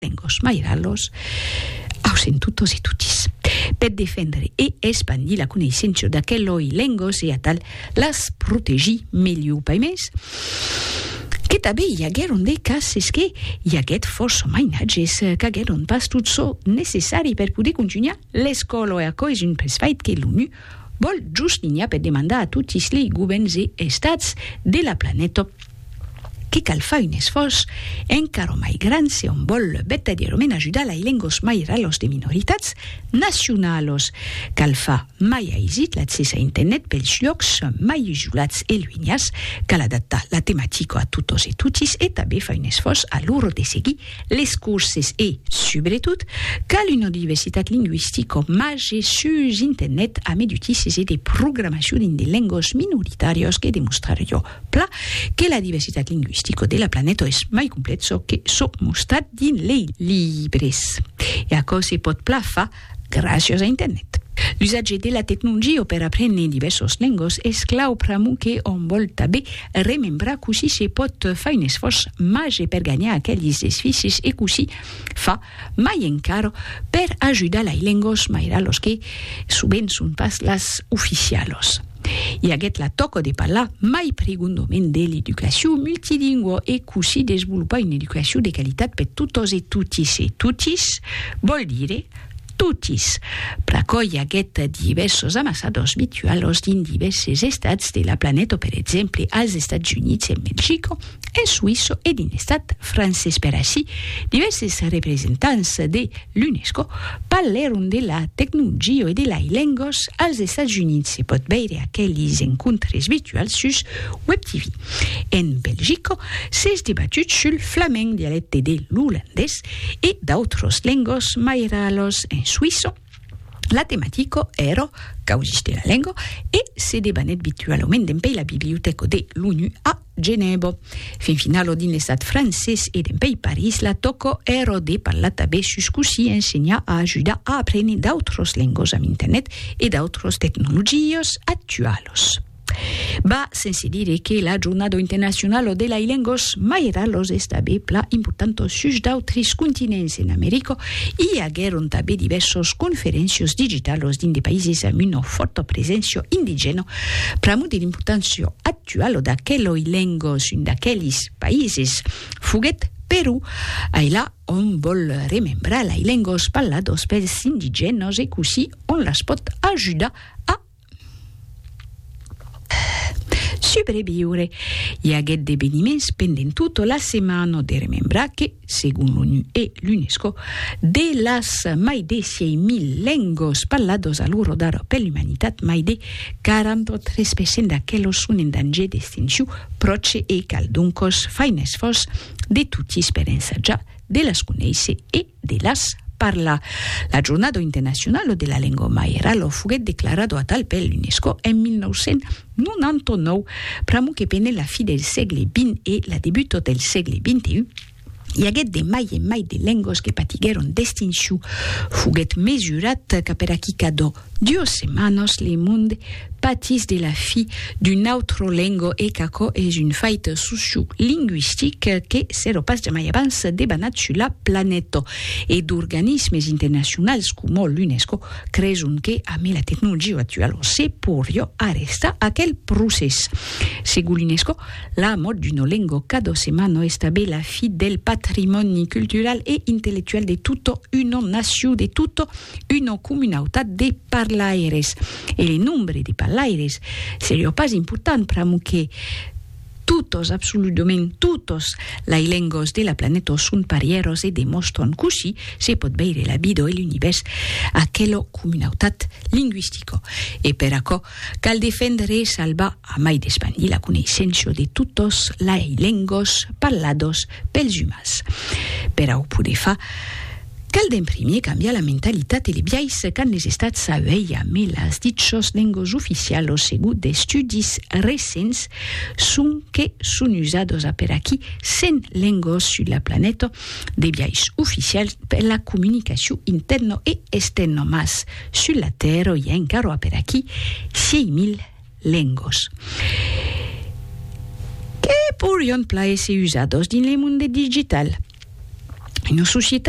lengos mairalos aus en totos e totis. Per defendre e espandir la coneissença d'aqueloi lengos e atal las protegir melhor pas mès que tanben i aguèron de cases que i aguèt fòrça mainatges qu'aguèron pas tot çò necessari per poder contunhar l'escòla e aquò es un pressfait que l'ONU vòl juslinhar per demandar a totis lei govèrns e estats de la planeta Que cal far un esfòrç encara mai grand se òm vòl vertadièrament ajudar lai lengos mai ralos de minoritats nacionalos. Cal far mai aisit l'accès a internet pels lhòcs mai isolats e luenhas, cal adaptar la tematica a totos e totis e tanben far un esfòrç a lor de seguir les corses e, subretot, cal una diversitat lingüistica màger sus internet a medutisses e de programacion dins de lengos minoritàrios que demostrar jo. Pla que la diversitat lingüistica de la planeta es mai complet çò que çò mostrat dins lei libres. E aquò se pòt pla fa gràcias a internet. L'usatge de la tecnolgia per aprene divèrsas lengas es clau pr'amor que òm vòl tabé remembrar cossí se pòt far un esfòrç màger per ganhar aquelis esficis e cossí fa mai encara per ajudar lai lengos mairalos que, sovent, son pas las oficialos. I aguèt la tòca de parlar mai pregondament de l'educacion multilingua e cossí desvolopar una educacion de qualitat per totas e totis, e totis vòl dire totis, pr'aquò i aguèt divèrsos amassadors virtualos dins divèrses estats de la planeta, per exemple, als Estats Units, en Belgica, en suïsso e dins l'estat francés. Per aicí, divèrses representants de l'UNESCO parlèron de la tecnologia e de lai lengas als Estats Units. Se pòt veire aquelis encontres virtuals sus WebTv. En Belgica, s'es debatut sul flamend, dialècte de l'olandés, e d'autras lengas mai ralas. En suïssa, la tematica èra causas de la lenga e se debanèt virtualament dempèi la bibliotèca de l'ONU a Genèbo. Fin finalo dins l'estat francés e dempeï París la tòco ero de parlar tabé sus cossí ensenhar a ajudar a aprene d'autros lengos amb internet e d'autros tecnologios actualos. Ba, sense dire que la jornado internacionalo de lai lengos mai era los estabé pla importanto sus d'autris continents en Americo i aguèron tabé divèrsos conferencios digitalos dins de païses amb una fòrta preséncia indigèna pr'amor de l'importància actuala Tua lo d'aqueloi lengos un d'aquelis paises foguèt Perú, ailà ont vòl remembrar lai lengos parlados pels indigènos e cossí on las pòt ajudar a subreviure. I aguèt d'eveniments pendent tota la setmana de remembrar que. segon l'ONU e l'UNESCO, de las mai de 6.000 lengos parlados a l'orodar per l'umanitat, mai de 43% d'aquelos son en danger d'extinciu pròche e cal doncos fai un esfòrç de totis per ensajar de las conéisser e de las parlar. La jornada internacionala de la lengua maira lo foguèt declarada atal per l'UNESCO en 1900. 99, pr'amor que pene la fi del sègle vint e la debuto del sègle vinti un, i aguèt de mai en mai de lengos que patiguèron d'extincion. Foguèt mesurat qu'a per aquí cadó duos setmanos le monde patís de la fi d'un autro lengo e qu'aquò es un fait sociolingüistic que s'èro pas jamai abans debanat sus la planeta e d'organismes internacionals coma l'UNESCO creson que amé la tecnologia actuala se porrió arrestar aquel procès. Segon l'UNESCO, la mòrt d'una lenga cada setmana estable la fi del patrimòni cultural e intellectual de tota una nacion, de tota una comunautat de parlaires. E le nombre de parlaires seriá pas important pr'amor que, Totos, absoludament totos, lai lengos de la planèto son parièros e demòstran cossí se pòt veire la vida e l'univèrs aquelo comunautat linguistico. E per aquò, cal defendre e salvar, amai d'espandir la coneissenço de totos lai lengos parlados Pels umans. Per au poder far, cal d'en primier cambiar la mentalitat e le biais qu'an les estats a uelha, me las dichos lengos oficial au segut d'estudis recents son que son usados a per aquí 100 lengos sus la planeta de biais oficial per la comunicacion interno e externo mas sus la terra i a encaro a per aquí 6000 lengos que porion plaer se usados dins le monde digital. Una societat